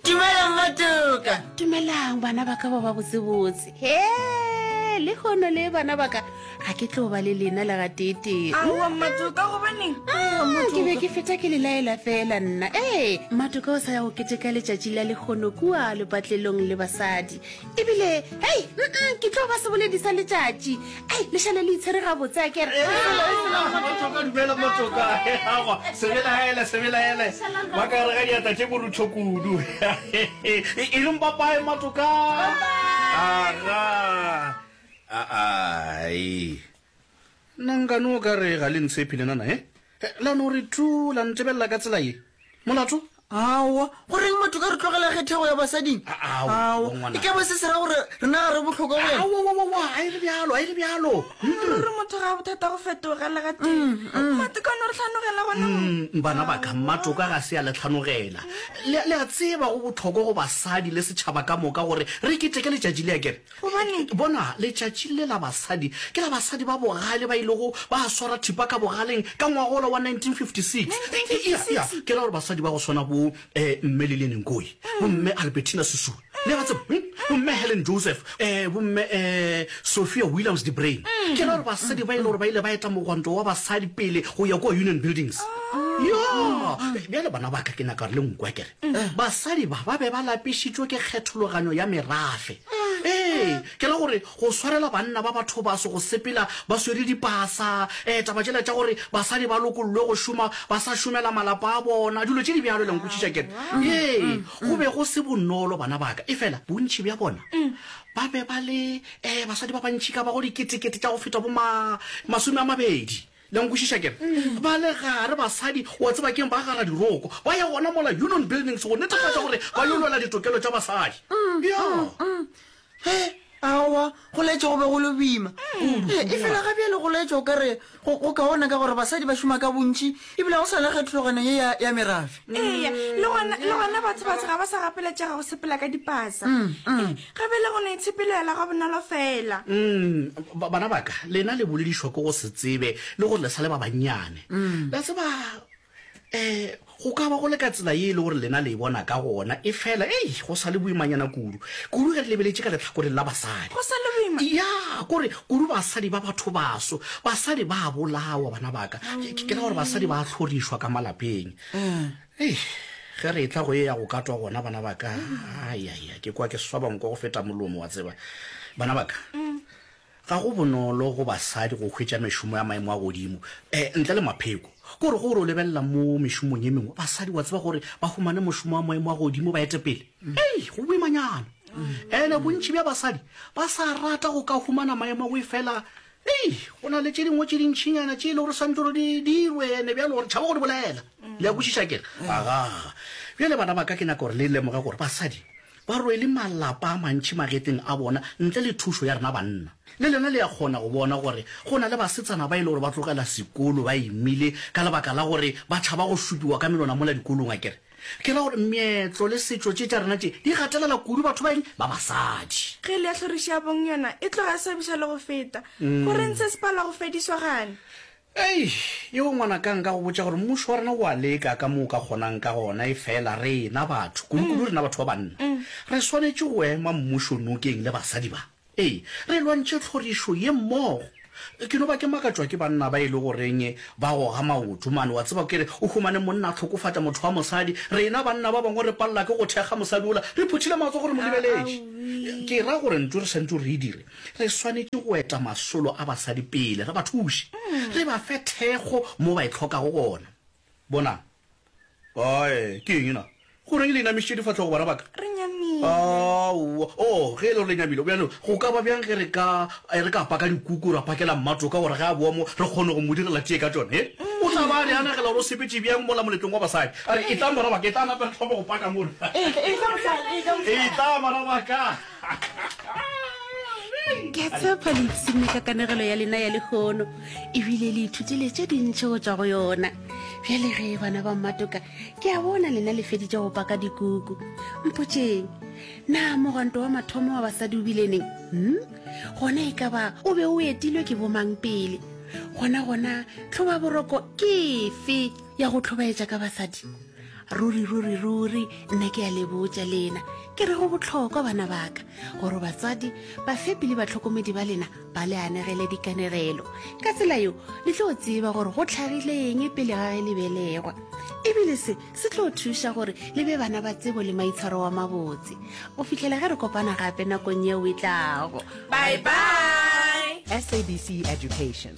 Dumelang matuka. Dumelang bana ba ka ba ba botsebotse. He, le hono le bana ba ka ga ke tlo ba le lena le ga tete. Aowa matuka gobaneng? Ah, ke be ke feta ke le laela fela nna. Ee, matuka o sa ya go keteka letšatši la lekgono kua lepatlelong le basadi. ebile hei mm ke tlo ba seboledi sa letšatši ei lešale le itshwere gabotse a kere sebelaele sebelaele ba ka rega diata tše borutho kudu e reng papae matoka aga aa Na nka no ka re ga le ntshepi lenana, he? La no re thu, la ntebelela ka tsela ye? Molato? Aowa. Go reng batho ka re tlogela ge thego ya basading? Aowa, ngwanaka. E ka ba se se ra gore rena ga re bohlokwa go yena? Aowa, a e re bjalo, a e re bjalo. Ruri motho ga a bothata go fetoga le ga tee. Matoka a no re tlhanogela gona mo. Bana ba ka, matoka ga se a le tlhanogela. Le a tseba go bohlokwa go basadi le setšhaba ka moka gore re keteke letšatši le akere? Gobane, bona, letšatši le la basadi ke la basadi ba bogale ba ilego ba swara thipa ka bogaleng ka ngwaga wola wa 1956. Eya, eya, ke ra gore basadi ba go swana bo eh, Mme Lilian Nkoyi, bo Mme Albertina Sisulu, le a ba tseba, hm, bo Mme Helen Joseph, eh, bo Mme eh, Sophia Williams de Bruyn. Ke ra gore basadi ba e le gore ba ile ba eta mogwanto wa basadi pele go ya kua Union Buildings. Yoo! Bjale, bana ba ka, ke nyaka gore le nkwa, ke re. basadi ba ba be ba lapišitšwe ke kgethologanyo ya merafe. Ee, ke ra gore go swarela banna ba bathobaso go sepela ba swere dipasa, um taba tšela tša gore basadi ba lokollwe go šoma ba sa šomela malapa a bona, dilo tše di bjalo, le a nkwešiša ke re? Ee, go be go se bonolo, bana ba ka. Efela bontši bja bona ba be ba le, um basadi ba bantši ka bago diketekete tša go feta bo ma, masome a mabedi. Le a nkwešiša ke re? Ba le gare basadi, o a tseba, keng, ba gara diroko. Ba ya gona mola Union Buildings go netefatša gore ba yo lwela ditokelo tša basadi. Yo! He, aowa, go laetša go be go le boima kudu. He, efela ga bjale go laetša o ka re go, go kaone ka gore basadi ba šoma ka bontši ebile go sa le kgethologanyo ye ya, ya merafe. eya le gona le gona batho batho ga ba sa gapeletšega go sepela ka dipasa Eh, ge be le go no itshepelela ga bonolo fela Mm, ba- bana baka lena le boledišwa ko go se tsebe le gore le sa le ba bannyane la tseba um go ka ba go le ka tsela ye e le gore lena le e bona ka gona e fela ei go sa le boimanyana kudu kudu ge re lebeletše ka letlhakoreng la basadi go sa le boima ya kore Kudu basadi ba bathobaso, basadi ba a bolawa, bana ba ka. Ke ke ra gore basadi ba a hlorišwa ka malapeng. Hei, ge re etla go e ya go katwa gona, bana ba ka, ayaya, ke kwa ke swaba nko go feta molomo, wa tseba. Bana ba ka, ga go bonolo go basadi go hwetša mešomo ya maemo a godimo, eh, ntle le mapheko. Ke gore ge o re o lebelela mo mešomong e mengwe, basadi wa tseba gore ba humane mošomo wa maemo a godimo, ba etepele. Ei, go boimanyana. Ene bontši bja basadi ba sa rata go ka humana maemo go efela ei, go na le tše dingwe tše dintšhinyana tše e le gore swantse gore di dirwe ene bjalo gore tšhaba go di bolela. Le ya kwešiša kere? Aga. Bjale bana ba ka ke nyaka gore le lemoge gore basadi ba rwele malapa a mantši magetleng a bona ntle le thušo ya rena banna. Le lena le ya kgona go bona gore go na le basetsana ba e le gore ba tlogela sekolo ba imile ka lebaka la gore ba tšhaba go šupiwa ka melona mola dikolong akere? Ke ra gore meetlo le setšo tše tša rena tše di gatelela kudu batho ba eng? Ba basadi. Ge le ya hlorišabong yona e tloga e swabiša le go feta. Go reng se se palwa go fediswa gane? Ei, yeo ngwanaka nka go botša gore mmušo wa rena o a leka ka mo o ka kgonang ka gona efela rena batho, kudukudu rena batho ba banna, re swanetše go ema mmušo nokeng le basadi ba. Ee, re lwantšhe tlhorišo ye mmogo. Ke no ba ke makatšwa ke banna ba e le goreng ba goga maoto mane, wa tseba, ke re o humane monna a hlokofata motho wa mosadi, rena banna ba bangwe re palela ke go thekga mosadi ola re phuthile matsogo re mo lebeletše. Ke ra gore ntlo re swantšwe re e dire, re swanetše go eta masolo a basadi pele, re ba thuše, re ba fe thekgo mo ba e hlokago gona. Bonang. Ae, ke eng na? Goreng le inamišitše difahlogo, bana ba ka? Re nyamile. Aowa. Oh, ge e le gore le nyamile, bjalo go ka ba bjang ge re ka, eh, re ka paka dikuku ra pakela Mmatoka gore ge a boa mo re kgone go mo direla tee ka tšona, eh? O tla ba a re a nagela gore o sepetše bjang mola moletlong wa basadi. A re, Etlang, bana ba ka, etlang gape re thome go paka mona. Etlang, bana ba ka. ke a tshepa le ipsenne ka kanegelo ya lena ya lekgono ebile le ithutile tše dintšhe go tswa go yona bjale ge bana ba mmatoka ke a bona lena le feditše go paka dikuku mpotseng na mogwanto wa mathomo wa basadi o bileneng hmm? gona e ka ba o be o etilwe ke bomang pele gona gona tlhoba boroko ke fe ya go tlhobaetša ka basadi ruri ruri ruri nna ke ya lebotsa lena ke re go botlhokwa bana baka gore batsadi bafepi le batlhokomedi ba lena ba le anegele dikanegelo ka tsela yo le tlo tseba gore go tlhagileng pele ga ge le belegwa ebile se se tlo thuša gore le be bana ba tsebo le maitshwaro wa mabotse go fitlhela ge re kopana gape nakong yeo e tlago bye bye sabc education